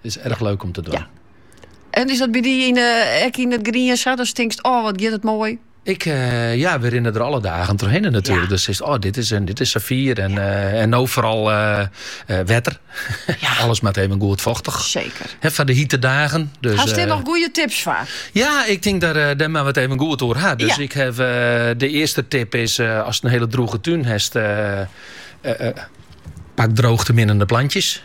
Is erg leuk om te doen. En is dat by dy yn 'e ek yn it grien sa? Datst tinkst, oh wat giet it moai? Ik, eh, ja, we rinnen der alle dagen doorheen natuurlijk. Dus is, oh, dit is, een, dit is saffier en, eh, en nou vooral eh, eh, wetter. Ja. Alles met even goed vochtig. Zeker. He, van de hitte dagen. Dus, Had je nog goede tips voor? Ja, ik denk dat daar maar wat even goed door had. Dus ik heb, de eerste tip is, als het een hele droge tuin hebt, pak droogte minnende plantjes.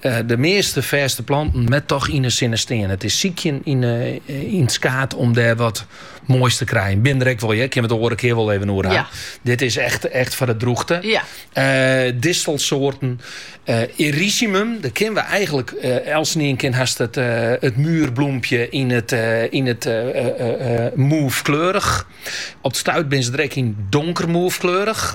De measte fêste planten moatte toch yn 'e sinne stean. It is sykjen yn 'e yn it skaad om dêr wat moais te krijen. Bin der ek wol, kin we in oare kear wol even oer ha. Dit is echt, echt foar de drûchte. Ja. Uh, distelsoarten. Uh, eh, Erysimum, dat kenne we eigenlik uh, eh, elkenien ken hast it, uh, it muurbloempje yn it, uh, yn it uh, uh, mauvekleurich. Op it stuit bin se der ek yn donker mauvekleurich.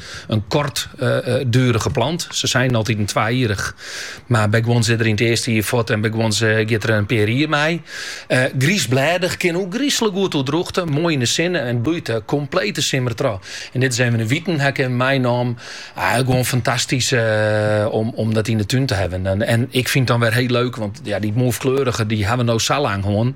In kortdurige plant. Se seinen altiten twajierich, mar by guons is er yn it earste jier fuort en by guons giet er in pear jier mei. Griisblêdich, kin ôfgryslik goed oer drûchte, moai yn de sinne en bloeit de komplete simmer troch. En dit is even in witen ha 'k meinommen, gewoan fantastysk om dat yn de tún te hawwen. En ik fyn it dan wer hiel leuk, want dy mauvekleurige hawwe we no sa lang hân.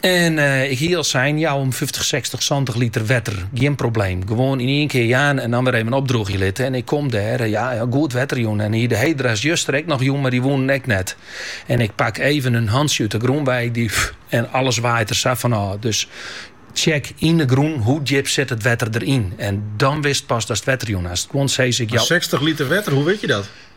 En ik hie al sein, jou om fyftich, sechstich, santich liter wetter, gjin probleem. Gewoan yn ien kear jaan en dan wer even opdroechje litte. En ik kom dêr, ja, goed wetter jûn. En hie de hedera's juster ek noch jûn, mar dy woenen ek net. En ik pak even in hantsje út de grûn wei, dy, en alles waait der sa fan ôf. Dus tsjek yn de grûn hoe djip sit it wetter deryn. En dan witst pas datst wetter jûn hast. Guon sizze ik jou mar sechstich liter wetter, hoe wit je dat?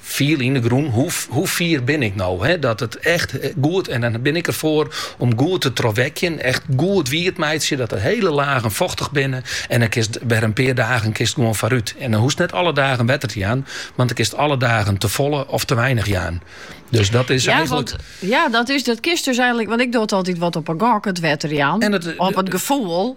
fiel yn de grûn, hoe fier bin ik no, dat it echt goed, en dan bin ik derfoar om goed te trochwekjen, echt goed wiet meitsje, dat de hiele lagen fochtich binne en dan kinst wer in pear dagen kinst gewoan foarút. En dan hoechst net alle dagen wetter te jaan, want dan kinst alle dagen te folle of te weinig jaan. Dus dat is ja, eigenlik... Want, ja, dat, is, dat kinst dus eigenlik... Want ik doch it altyd wat op 'e gok, it wetterjaan. En it, op it gefoel.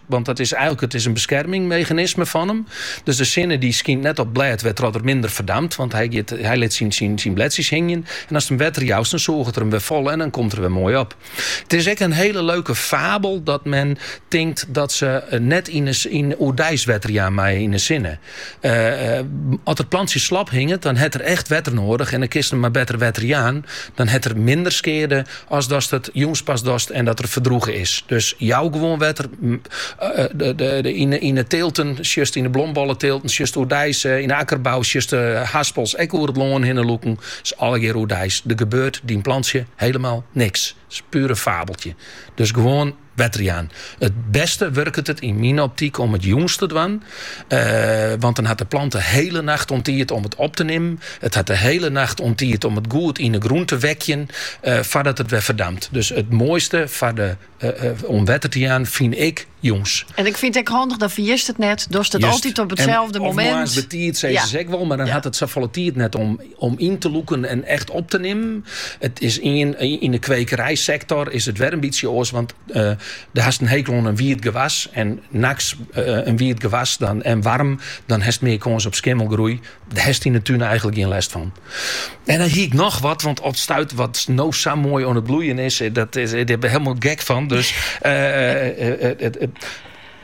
Want dat is eigenlik, it is in beskermingsmeganisme fan him. Dus de sinne die skynt net op it blêd wêrtroch er minder verdampt, want hy, giet, hy lit syn, syn, syn bledsjes hingjen. En ast him wetter joust, dan sûget er him wer folle en dan komt er wer moai op. It is ek in hiele leuke fabel dat men tinkt dat se net yn, yn oerdeis wetter jaan meie yn 'e sinne. As it plantsje slap hinget, dan hat er echt wetter noadich en dan kinst him mar better wetter jaan. Dan hat er minder skeade as datst it jûns pas dochst en dat er ferdroege is. Dus jou gewoan wetter. Yn 'e teelten sjochst, yn 'e blombolleteelten sjochst oerdeis. Yn 'e akkerbou sjochst de haspels ek oer it lân hinne lûken. It is allegear oerdeis. Der gebeurt dyn plantsje hielemaal niks. It is puer in fabeltsje. Dus gewoan. Wetterjaan. It bêste wurket it yn myn optyk om it jûns te dwaan. Eh, want dan hat de plant de hiele nacht oan tiid om it op te nimmen. It hat de hiele nacht oan tiid om it goed yn de grûn te wekjen eh, foardat it wer ferdampt. Dus it moaiste foar de, eh, eh, om wetter te jaan fyn ik jûns. En ik fyn ek handich, dan ferjitst it net. Dochst it Just. altyd op En- itselde of momint. moarns betiid, sizze Ja. se ek wol, mar dan Ja. hat it safolle tiid net om Om yn te lûken en echt op te nimmen. It is yn 'e kwekerijsektor is it wer in bytsje oars, want do hast in hekel oan in wiet gewas en nachts in wiet gewas dan en waarm, dan hast mear kâns op skimmelgroei. Dêr hast yn 'e tún eigenlik gjin lêst fan. En dan hie ik noch wat, want op 't stuit wat no sa moai oan it bloeien is, dêr binne wy hielendal gek fan, dus.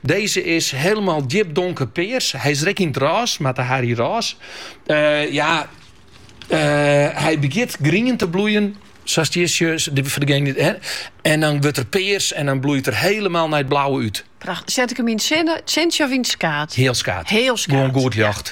Deze is helemaal djip donker pears. Hy is rekke yn it ras, mar te Harry Râs. Eh, ja, eh, hy begjint grien te bloeien, sa'st hjir sjochs, de- foar degenen die- hè. en dan wurdt er pears en dan bloeit er helemaal nei it blauwe út. Pracht. Set ik him yn it sintsje of yn it skaat? Heal skaat. Heal skaat. Gewoon goed ljocht.